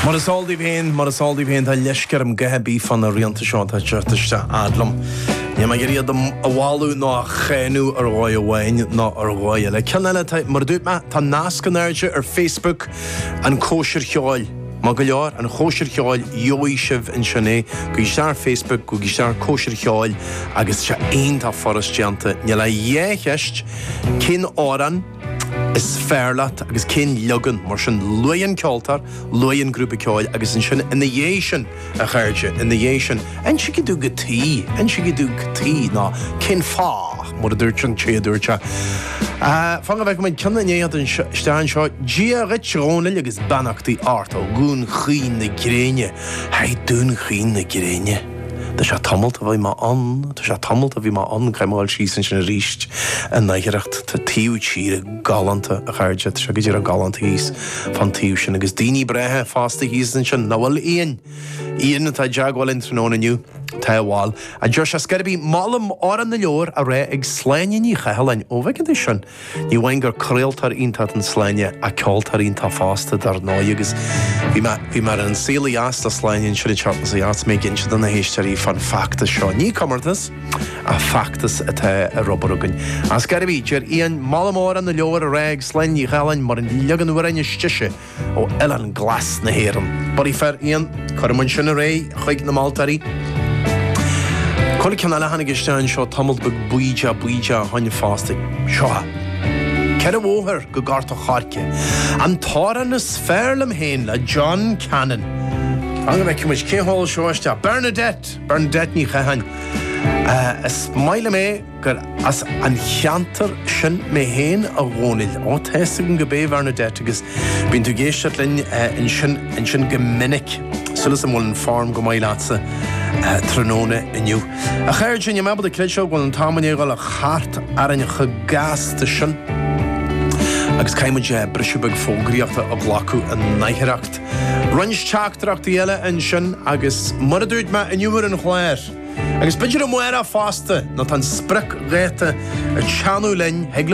Mar is eol daoibh féin, mar is eol daoibh féin, tá leisce orm a dhath ar bith fá na rianta seo atá ag teacht isteach fhad liom. Níl mé ag iarraidh iad a mholadh nó a cháineadh ar dhóigh amháin ná ar dhóigh eile. Ceann eile, tá, mar a dúirt mé, tá nasc in airde ar Facebook, An Chóisir Cheoil. Maith go leor, An Chóisir Cheoil, gheobhaidh sibh ansin é. Gabhaigí isteach ar Facebook, gabhaigí isteach ar Cóisir Cheoil agus seo aon tá furast déanta. Níl ach dhá cheist cén amhrán, Is fearr leat agus cén leagan? Mar sin, luaigh an ceoltóir, luaigh an grúpa ceoil agus ansin, ina dhiaidh sin, a chairde, ina dhiaidh sin, insígí domh cad chuige, insígí domh cad chuige, nó cén fáth, mar a dúirt an té a dúirt seo. Fan go bhfeice muid ceann i ndiaidh teacht isteach anseo. Dia dhuit, Dhónaill, agus beannachtaí ort ó Dhún Chaoin na Gréine. Haigh Dún Chaoin na Gréine. Tá sé tamalt ó bhí mé ann, tá sé tamalt ó bhí mé ann, caithfidh mé a ghabháil síos ansin arís in aicearracht tá taobh tíre galánta a chairde, tá sé go díreach galánta thíos fán taobh sin agus daoine breátha fosta thíos ansin, nach bhfuil a Iain? Iain atá i dteagmháil linn tráthnóna inniu, tá bhuel. A deir sé, ar scor ar bith, molaim Amhrán na Leabhar á rá ag Sláine Ní Chathalláin, ón cheantar sin. Ní amháin gur craoltóir iontach atá in Sláine ach ceoltóir iontach fosta dar ndóigh agus bhí mé, bhí mé ar An Saol ó Dheas ag Sláine ansin an tseachtain seo thart agus mé ag inse do na héisteoirí fán feachtas seo. Ní comórtas ach feachtas atá ar obair againn. Ar scor ar bith, deir Iain molaim Amhrán na Leabhar á rá ag Sláine Ní Chathalláin mar an leagan amhráin is deise, ó Oileán Glas na hÉireann. Bulaí fir Iain, cuirfidh muid sin ar aghaidh chuig na moltóirí. Cá bhfuil an ceann eile a tháinig isteach anseo tamall beag baoideach baoideach ó shin fosta. Seo é. Ceithre bhóthar go Gort an Choirce. An t-amhrán is fearr liom féin le John Cannon. Fan go bhfeice muid cé a sheol seo isteach. Bernadette! Bernadette Ní Chatháin. Is maith liom é. gur as an cheantar sin mé féin, a Dhónaill. Ó, tá a fhios agam gurb ea, Bernadette, agus bíonn tú ag éisteacht linn ansin, ansin go minic. Súil is agam go bhfuil an form go maith leatsa tráthnóna inniu. A chairde, níl mé ábalta a chreidbheáil go bhfuil an t-am i ndiaidh a dhul thart orainn chomh gasta sin? Agus caithfidh muid briseadh beag fógraíochta a ghlacadh in aicearracht. Roinnt teachtaireachtaí eile ansin, agus mar a dúirt mé inniu ar an chlár, Agus b'fhéidir amárach fosta, nó tá an spriocdháta ag teannadh linn, thig le.